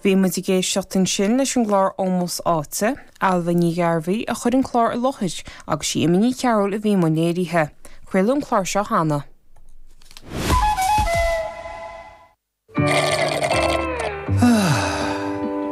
Bhí muid ag éisteacht ansin leis an gclár Ómós Áite, Ailbhe Ní Ghearbhuigh a chuir an clár i láthair agus is í Emma Ní Chearúil a bhí i mbun léirithe. Craoladh an clár seo cheana.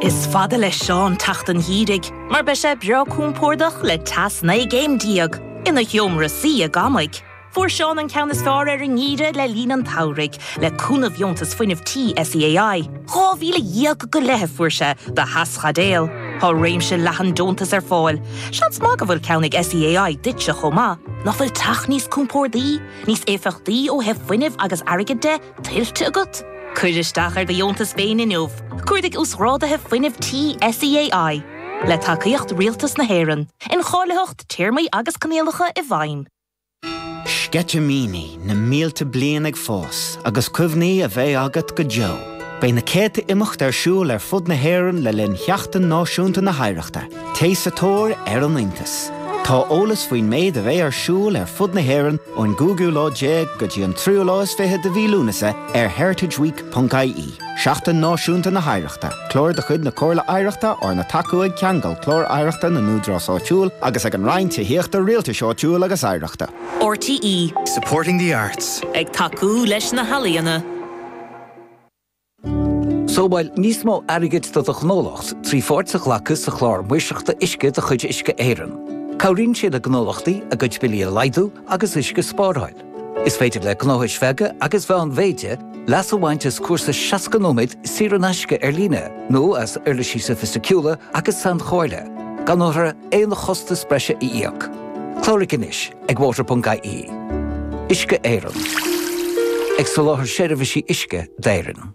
Is fada le Seán teacht an gheimhridh mar beidh sé breá compordach le teas 19 gcéim ina sheomra suí ag amaigh. Fuair Seán an ceann is fearr ar an ngeimhreadh le linn an tsamhraidh, le cúnamh dheontas fuinnimh tí SEAI. Dhá mhíle dhéag go leith a fuair sé do theaschaidéal. Tá réimse leathan deontas ar fáil. Seans maith go bhfuil ceann ag SEAI duitse chomh maith. Nach bhfuil teach níos compórdaí, níos éifeachtaí ó thaobh fuinnimh agus airgid de, tuillte agat? Cuir isteach ar do dheontas féin inniu. Cuardaigh Uasghráduithe Fuinnimh Tí SEAI. Le tacaíocht Rialtas na hÉireann. Incháilitheacht, Téarmaí agus Coinníollacha i bhfeidhm. Sceitimíní na mílte bliain ag fás agus cuimhní a bheidh agat go deo. Beidh na céadta imeacht ar siúl ar fud na hÉireann le linn Sheachtain Náisiúnta na hOidhreachta. Téigh sa tóir ar an iontas. Tá eolas faoin méid a bheidh ar siúl ar fud na hÉireann ón gcúigiú lá déag go dtí an tríú lá is fiche de mhí Lúnasa ar heritageweek. ie. Seachtain Náisiúnta na hOidhreachta, clár de chuid na Comhairle Oidhreachta arna tacú ag Ceangal Clár Oidhreachta na nÚdarás Áitiúil agus ag an Roinn Tithíochta, Rialtais Áitiúil agus Oidhreachta. RTÉ. Supporting the arts. Ag tacú leis na healaíona. Sábháil níos mó airgid do do ghnólacht trí pháirt a ghlacadh sa Chlár Maoirseachta Uisce de chuid Uisce Éireann. Cabhraíonn sé le gnólachtaí a gcuid billí a laghdú agus uisce a spáráil. Is féidir le gnóthais bheaga agus mheánmhéide leas a bhaint as cúrsa 60 nóiméad saor in aisce ar líne nó as uirlisí sofaisticiúla agus sainchomhairle, gan orthu aon chostas breise a íoc. Cláraigh anois ag water.ie. Uisce Éireann. Ag soláthar seirbhísí uisce d'Éirinn.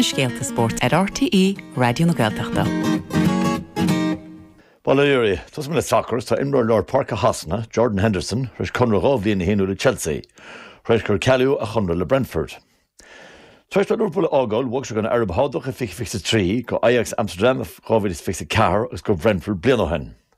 na scéalta spóirt ar RTÉ Raidió na Gaeltachta. Bail ó Dhia oraibh. Tosóidh mé le sacar is tá imreoir lár páirce Shasana, Jordan Henderson, tar éis conradh dhá bhliain a shíniú le Chelsea, tar éis gur cealaíodh a chonradh le Brentford. Tar éis dó Liverpool a fhágáil, bhog sé chuig an Araib Shádach i 2023, go Ajax Amsterdam i 2024 agus go Brentford bliain ó shin.